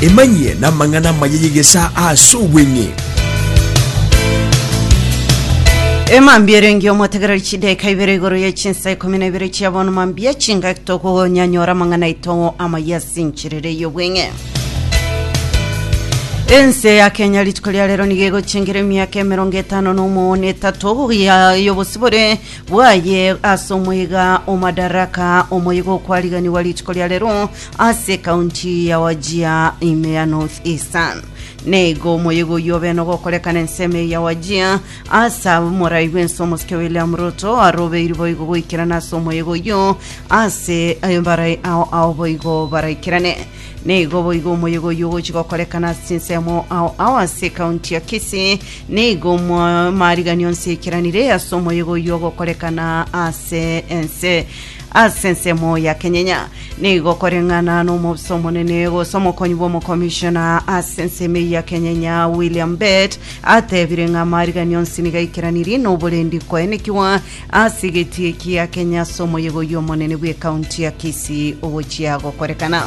Emanyie namang'ana amaya y'egesaa ase obweng'e. Emambia erenge omotegereri chidaeka ibere igoro ye chinsa ikomi na ibere chia bono mambia chingaki tokonyanyora amang'ana aito amaya ase encherera ey'obweng'e ense ya kenya rituko ria rero nigo egochengera emiaka emerongo etano na omo na etato ya- y'obosibore bwaye ase omoiga o Madaraka, omoiga okwariganigwa rituko ria rero ase ekaunti ya Wajia ime ya North Eastern. Neigo omoiga oyio obe nogokorekana ensemo eye ya Wajia ase abo morai bwensi omosike William Ruto arobeiri boigo goikerana ase omoiga oyio ase eh, barai ao ao boigo baraikerane. Nigo boigo omoyega oyio ogochi gokorekana ase chinsemo ao ao ase ekaunti ya Kisii. Nigo omo- amariganio onsi aikeranire ase omoyega oyio ogokorekana ase ense ase ensemo ya kenyenya nigo koreng'ana n'omobisa omonene gose omokonyi bw'omokomishona ase ensemo eyio ya kenyenya william bet atebire ng'a amariganio onsi nigo aikeraniri n'oborendi koenekigwa Ase egetie kia Kenya ase omoyega oyio omonene bw'ekaunti ya Kisii ogochia gokorekana.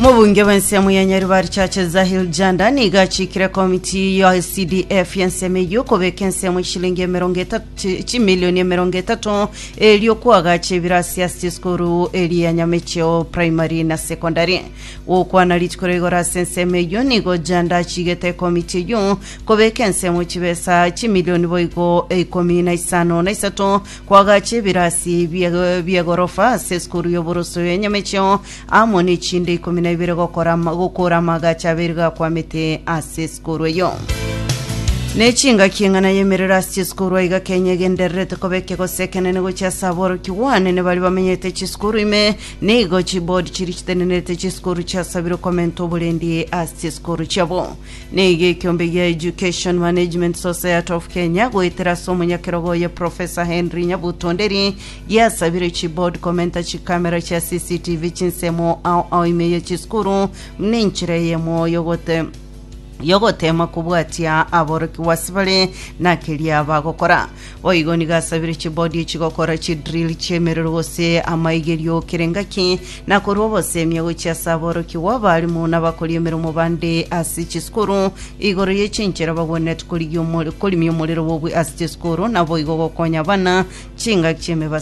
Mobunge bw'ensemo ya Nyaribari Churches Zahil Janda niga achikire komiti ya CDF y'ensemo eyio kobeka ensemo y'eshilingi emerongo etatu chimilioni emerongo etatu erio kwagacha ebirasi ase esukuru eri ya Nyamecheo Primary na Secondary. Gokwana rituko rigoro ase ensemo eyio nigo Janda achigete komiti eyio Kobeka ensemo chibesa chimilioni boigo ikomi na isano na isato koagachia ebirasi bie- bi'egorofa ase esukuru y'oboroso ya Nyamechio, amo nechinde ikomi na ibere gokora ama- gokoora amaagacho abere gakwamete ase esukuru eyio. Ne chingaki eng'ana y'emerero ase chisukuru aiga Kenya egendererete koba ekegosi ekenene gochia ase aborokigwa anene baria bamenyete chisukuru ime, nigo chiboard chiria chitenenerete chisukuru chiasabire komenta oborendi ase chisukuru chiabo. Nigo ekiombe gia Education Management Society of Kenya goetera ase omonyakerogo oye Professor Henry Nyabuto Nderi giasabire chi board komenta chikamera chia CCTV chinsemo ao ao ime ya chisukuru buna enchera eyemo yogote yogotema kobwatia aborokigwa ase bare na keria bagokora. Boigo nigo asabire chibodi chigokora chidrill chi'emerero gose amaigerio kera engaki, na korwa ogosemia gochia ase aborokigwa abalimu na abakori emeremo bande ase chisukuru igoro ye chinchera bagwenerete korigia omor- korimia omorero bobui ase chisukuru, naboigo gokonya abana chingaki chi'emebasibwa